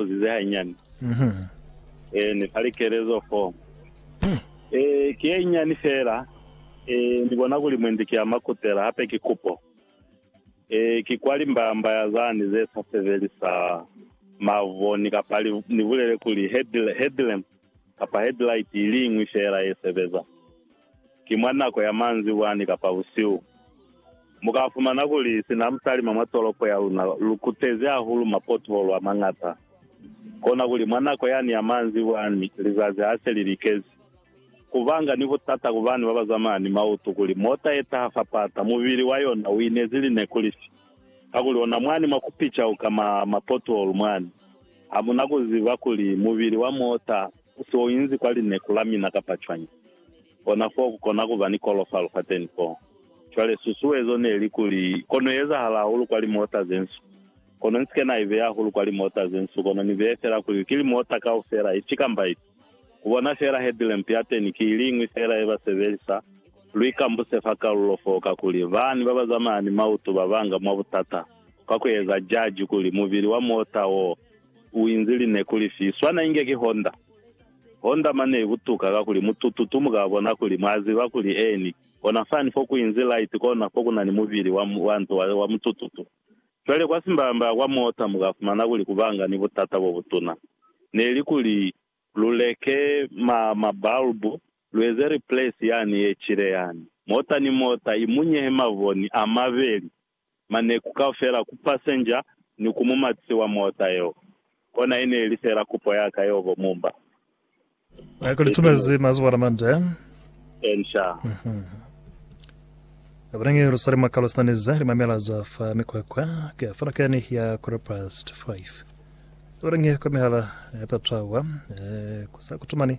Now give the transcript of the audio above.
buzize hainyani. Eh, ni fa likelezo fo. Eh, ki ye inyani fela. Eh, ni bona kuli mwendi ki ama kutela, hape ki kupo. Eh, ki kwa limbamba ya zani ze sa sebeli sa mavoni kapa li, ni bulele kuli head, headlamp kapa headlight iliñwi fela ye sebeza. ki mwa nako ya manzibwa ni kapa busihu. Mu ka fumana kuli sina mu talima mwa tolopo ya luna lu kutezi hahulu mapotholo a mañata. Kona kuli mwa nako yani ya manzibwa ni lizazi ha se li likezi, ku banga ni butata ku bani ba ba zamaya ni mautu kuli mota ye taha fa pata mubili wa yona u inezi lineku lifi. Kakuli ona mwani mwa ku picauka mwa mapotholo mwani, ha mu na ku ziba kuli mubili wa mota U se u inzi kwa lineku la mina kapa cwañi, kona foo ku kona ku ba ni kolofalo fateni foo. Cwale, susuezo ne li kuli, kono ezahala hahulu kwa limota ze nsu, kono ni si ke na i beya hahulu kwa limota ze nsu, kono ni beye fela kuli ki limota kaufela, ifi kamba ifi. Ku bona fela headlamp yateni ki iliñwi fela ye ba sebelisa. Lu ikambuse fa kalulo foo, kakuli bani ba ba zamaya ni mautu ba banga mwa butata, kwa ku eza jaji kuli mubili wa mota woo u inzi li ne kuli fi swana inge ki Honda. Honda mane i butuka kakuli mutututu mu ka bona kuli mwa ziba kuli eni ona fani fo ku inzi light kona fo ku na ni mubili wa, wa nto wa, wa mutututu. Cwale kwa simbaya-mbaya kwa mota mu ka fumana kuli ku banga ni butata bo butuna. Ne li kuli lu leke ma, ma bulb, lu eze replace yani ye cile yani. Mota ni mota i munyehe mavoni a mabeli. maneku kaufela ku pasenja ni ku mumatisi wa mota yeo. Kona i ne ili fela kupo ya ka yeo bo Mumba. Mwa ku litumezi mwa zuba la Mande. Ensha. Ka kona nge lu sali mwa kalo sinani ze limamela za fa mikwakwa ka falakani ya quarter past five. Ka kona nge kwa mihala ya patwawa, eh, ku sa kutumani